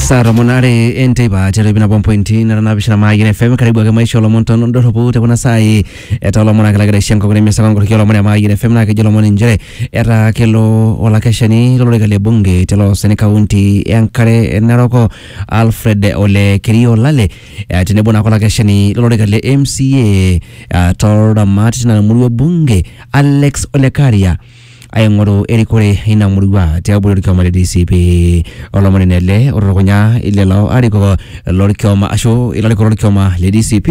saa tomon are enteipa tiatua nabo mpointi nara naapishana maayien fm karibu ake maisha olomon tondorropu te kuna saai etaa olomon ake lagira aisho enkop nemesaka nkoriki olomon e maayien fm naa kejo olomon inchere etaa kelo olakeshani lolorika le bunge te loosani kaunti enkare naroko alfred ole kerio lale eh, tenebo naake olakeshani lolorika le mca ah, toldamat tina murua e bunge alex olekaria aing'oru erikore ina murua tiabori orkioma le DCP. Olomoni ele otutukunya lelo arikok lorkioma ashu ilarikok lorkioma le DCP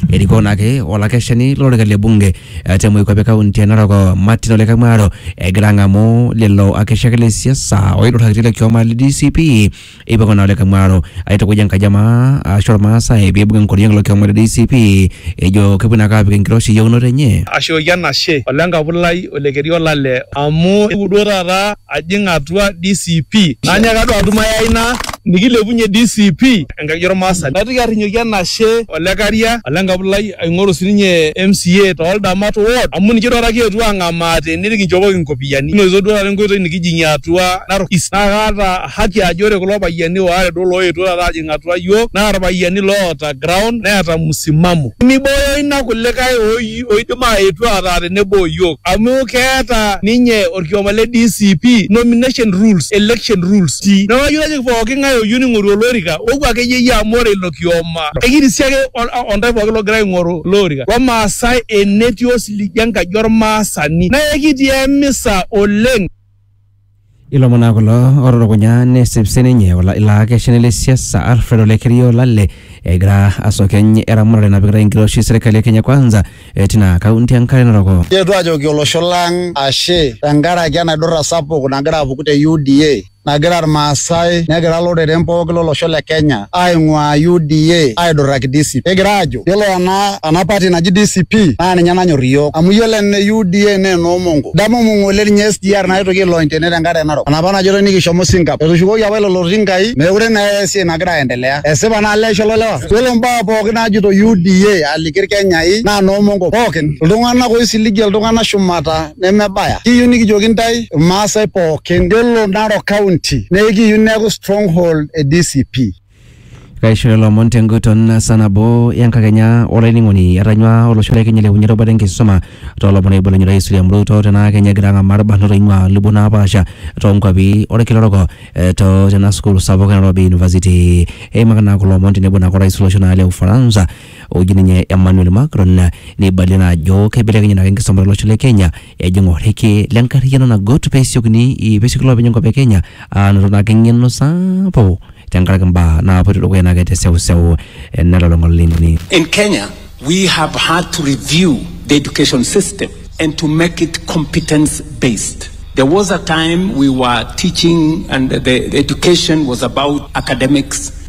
erikoo naake olakeshani lolorika le bunge eh, te Moikuape kaunti e Narok Martin Ole Kamwaro egira ang'amu lelo akeshak le siasa oidurrakita ilo kioma le DCP eipang'u naa olikae mwaro aitukuj enkaji ama ashu ormaasai peibung enkoriong ilo kioma le DCP ejo kepuo naake apik enkiroshi eyieunoto enye. ashooki enashe ole nkapu lai ole keri olale amu ewuo duo taata ajing atua DCP nanyaaka duo atum ai aina nikilepunye DCP enkaji ormaasani naitoki arrinyoki enashe ole karia ole nkapu lai aing'oru sininye MCA too ldamat ward amu ninche duo taata kietuo ang'amaa tene nikinchopoki inkopiyiani kinotito duo taata enkoitoi nikijing'ie atua Narok east naa kaata haki ajo ore kulo payiani waare duo looetuo taata aajing atua iyiook naa irpayiani loota ground neeta musimamo. Nimiboyo ina kulikae oidim aaetu ataa tenebo o iyiook amu keeta ninye orkioma le DCP nomination rules, election rules. Neaku ayieu najoki pooki ngae oyieu ningoru olorika opuo akeyie yie amu ore ilo kioma ekirisi ake ontae pooki logira aingoru ilo orika lo maasae enetii osiligi enkaji ormaasani naa ekitii emisa oleng. Ilomon naa kulo otutukunya nesip sininye ola- ilo akeshani le siasa Alfred Ole Kerio Olale egira asukeny eramatare napikitae enkiroshi serkali e Kenya Kwanza eh, tina kaunti e Nkare Narok. Keetuo ajoki olosho lang ashe tenkaraki enaidurra sapuk nagira apuku te UDA nagira Irmaasai negira loreren pooki lolosho le Kenya aing'uaa UDA aidurraki DCP. Kigira aajo Yiolo ena ena party naji DCP naa ninye nanyor iyiook amu yiolo ene UDA naa enoo Mongo. Damu Mongo oleng ninye SGR naitoki ailony tene tenkare narok. Enapa najoitoi nikishomo Singap. Etushukoki apa lelo tinkai meekure naa eya esiai nagira aendelea. Esipa naa leisho ilo lewa. Yiolo mbaa pookin naajito UDA aliki Irkenyai naa noo Mongo pookin. Iltung'anak oisiligie iltung'anak shumata nemebaya. Kiyieu nikijoki intae Irmaasai pookin yiolo Narok County naa ekiyieu neeku stronghold e DCP. Kaishooyo lomon tenguton saa nabo enkakenya olainining'oni etanyua olosho le Kenya ailepunye erubata enkisuma toolomon oibelekenye Rais William Ruto tenaa Kenya egira ang'amaa irbanot oing'ua lubot napaasha toonkuapi olkila orok eh, to tena sukuul sapuk e Nairobi University. Eimaka naa kulo omon tenebo naa orais lolosho naa le Ufaransa oji ninye Emmanuel Macron neibalie naa ajo keibelekenye naake enkisuma tolosho le Kenya ejing orrekie le nkarriyiano nagut pesiokini i- pesioki loopeny enkop e Kenya anoto naa ake eng'eno sapuk tenkaraki mbaa naapoito dukuya naake te seuseu eh, nelulung'a oleng. In Kenya, we have had to review the education system and to make it competence based. There was a time we were teaching, and the, the education was about academics,